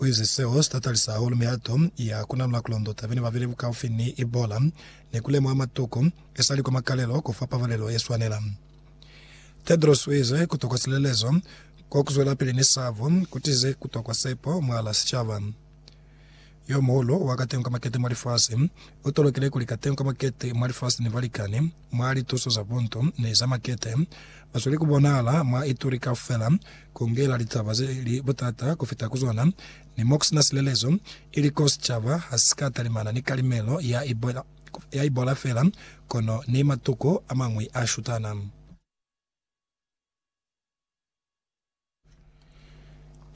Uize seo sitatalisa hahulu mihato ya kunalula kulondo tabeni babeli bukaufi ni Ebola ni kulemuha matuku esali kwa makalelo kufa pabalelo yeswanela. Tedros uize kutokwa silelezo kwa kuzwelapili ni sabo kutize kutokwa sepo mwala sicaba. Yomuhulu wa katengo ka makete mwa lifasi u tolokile kuli katengo ka makete mwa lifasi ni balikani mwa lituso za bundu ni za makete ba sweli ku bonahala mwa ituri kaufela, ku ngela litaba ze li butata ku fita ku zona ni mo ku sina silelezo, ili koo sicaba ha si ka talimana ni kalimelo ya ibola fela kono ni matuku a mañwi a shutana.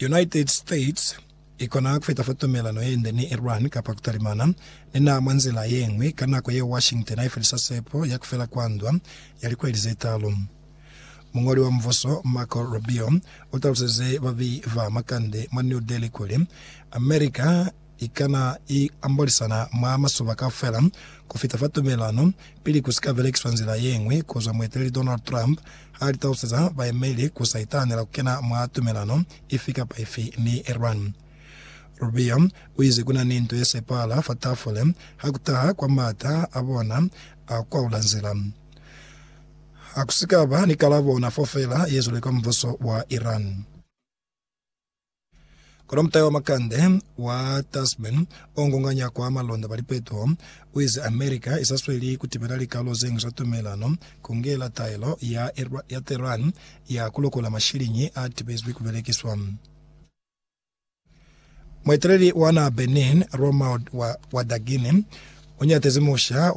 United States ikona kufetafa tumelano yende ni Iran kapa kutalimana ni naha mwa nzila yeñwi ka nako yeo Washington haifelisa sepo ya kufela kwa ndwa ya likweli zetaalu. Muñoli wa mubuso Marco Rubio utaluseze babeyi ba makande mwa New Delhi kuli, America i kana i ambolisana mwa masoba kaufela ku fita fa tumelelano pili ku si ka belekiswa nzila ye ñwi ku zwa mueteleli Donald Trump ha li taluseza baemeli ku sa itahanela ku kena mwa tumelelano ifi kapa ifi ni Iran. Rubio u ize ku na ni nto ye sepahala fa tafule ha ku taha kwa m'ata a bona a ku kwaula nzila. Ha ku si ka ba ni kalabo ona fo fela ye zwile kwa mubuso wa Iran. Kono mutai wa makande wa Tasman ongonganya kwa malonda ba lipetuho uize America isasweli kutibela likalo zeñwi za tumelano, kungela taelo ya ya Tehran ya kulokola mashiliñi atibezwi kubelekiswa. Mueteleli wa naha Benin, Romuald Wadaghini, unyatezi musha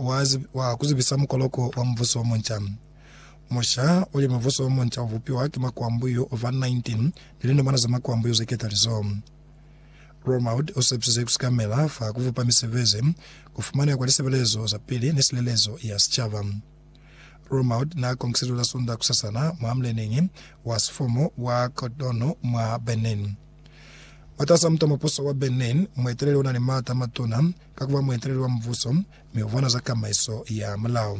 wa kuzibisa mukoloko wa mubuso omunca. Musha wa lya mubuso o munca u bupiwa ki makwambu yo fa 19 ni linamana za makwambu yo ze ketalizo. Romuald u sepisize ku sikamela fa ku bupa misebezi, ku fumaneha kwa lisebelezo za pili ni silelezo ya sicaba. Romuald n'a konkisize la Sunda kusasana mwa mleneñi wa sifomo wa Cotonou mwa Benin. Mwataas'a muta mupuso wa Benin, mueteleli u na ni maata a matuna ka ku ba mueteleli wa mubuso mi u bona za kamaiso ya mulao.